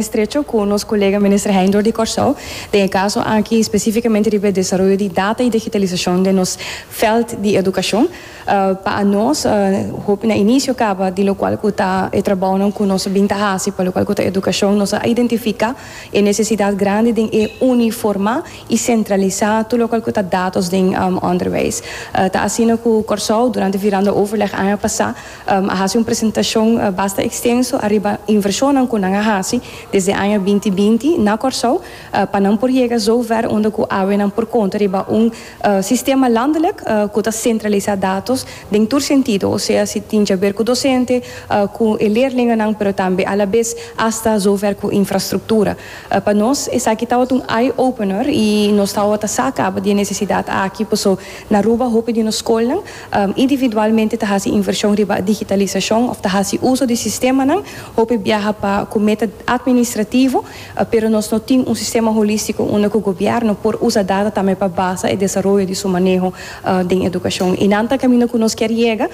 estrecho cu nos colega Minister Heindorp di Corsou den e caso aki specificamente riba e desaroyo di data y digitalisacion den nos veld di educacion. Pa anos hopi na inicio caba di locual cu ta e trabounan cu nos a bin ta haci pa locual cu ta educacion nos a identifica e necesidad grandi den e uniforma y centralisa tur locual cu ta datos den onderwijs. Ta asina cu Corsou durante viranda overleg aña pasa a hasi un presentashon basta ekstenso ariba invershonnan ku nan a hasi desde aña binti binti na Kòrsou pa nan por yega sou vèr unda ku awenan por konta riba un sistema landelek ku ta sentralisá datos den tur sentido, osea si tin djaber ku dosente, ku e leerlinganan pero tambe alabes asta sou vèr ku infrastruktura. Pa nos esaki tabata un eye opener i nos tabata sa kaba di e nesesidat aki paso na Aruba hopi di nos skolnan Individualmente ta hasi invershon riba digitalisashon òf ta hasi uso di sistemanan. Hopi biaha pa ku meta atministrativo, pero nos no tin un sistema holístiko unda ku gobièrnu por usa data tambe pa basa e desaroyo di su maneho den edukashon. I nan ta kaminda ku nos kier yega.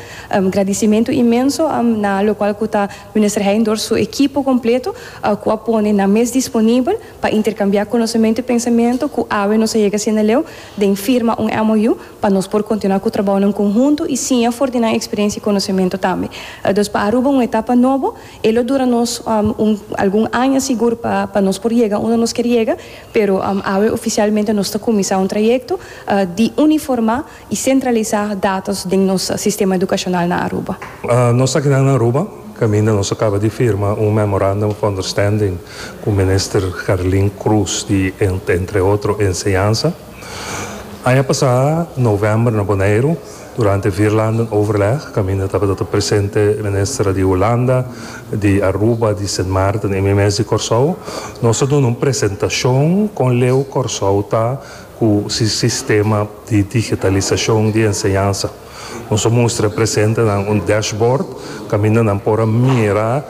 Gradisimentu inmenso na lokual ku ta Minister Heijn dor su ekipo kompleto ku a pone nan mes disponibel pa interkambiá konosementu i pensamentu ku awe nos a yega sinaleu den firma un MOU pa nos por kontinua ku trabounan konhuntu i siña for di nan eksperensia i konosementu tambe. Aldos pa Aruba un etapa nobo, e lo dura nos un algun aña sigur pa pa nos por yega unda nos kier yega, pero awe ofisialmente nos ta kuminsá un trayekto di uniformá i sentralisá datos den nos sistema edukashonal na Aruba. Nos akinan na Aruba kaminda nos a kaba di firma un Memorandum of Understanding ku Minister Gerlin Cruz di entre otro Enseñansa, Aña pasá novèmber na Boneiru, durante Vierlanden Overleg, kaminda tabata ta presente minister di Hulanda, di Aruba, di Sint Maarten i mi mes di Kòrsou, nos a duna un presentashon kon leu Kòrsou ta ku si sistema di digitalisashon di enseñansa. Nos a mustra presente nan un dashboard kaminda nan por a mira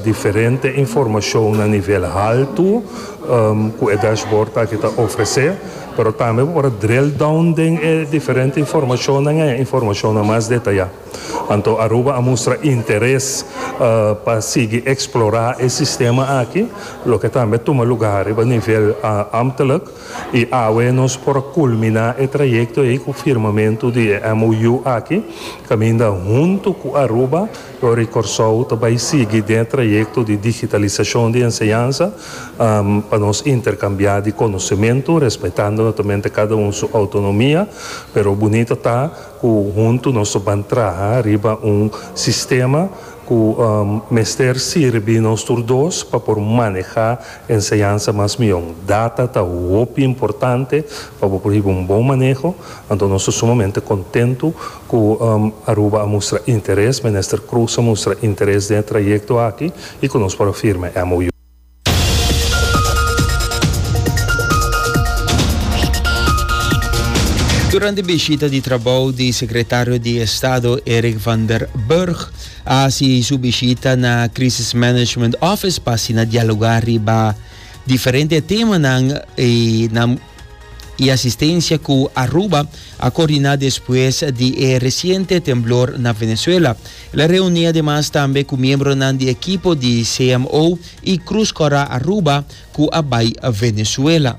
diferente informashon na nivel haltu ku e dashboard aki ta ofresé, pero tambe bo por a drill down den e diferente informashonnan en e informashonnan mas detayá. Anto Aruba a mustra interes pa sigui eksplorá e sistema aki, loke tambe tuma lugá riba nivel ámtelijk. I awe nos por a kulminá e trayekto ei ku firmamentu di e MOU aki, kaminda huntu ku Aruba, Lore i Kòrsou ta bai sigui den e trayekto di digitalisashon di enseñansa pa nos interkambiá di konosementu, respetando notamente kada un su outonomia, pero bunito ta. Ku huntu nos lo ban traha riba un sistema ku mester sirbi nos tur dos pa por manehá e enseñansa mas mihó. Data ta hopi importante pa bo por hiba un bon maneho, anto nos ta sumamente kontentu ku Aruba a mustra interes, Minister Croes a mustra interes den e trayekto aki i ku nos por a firma e MOU. Durante bishita di trabou di Sekretario di Estado Erik van der Burg a hasi su bishita na Crisis Management Office pa asina dialogá riba diferente temanan, e nan. y asistencia cu Aruba a coordina despues di e reciente temblor na Venezuela. El a reuni ademas tambe cu miembronan di ekipo di CMO y Cruz Cora Aruba cu a bay Venezuela.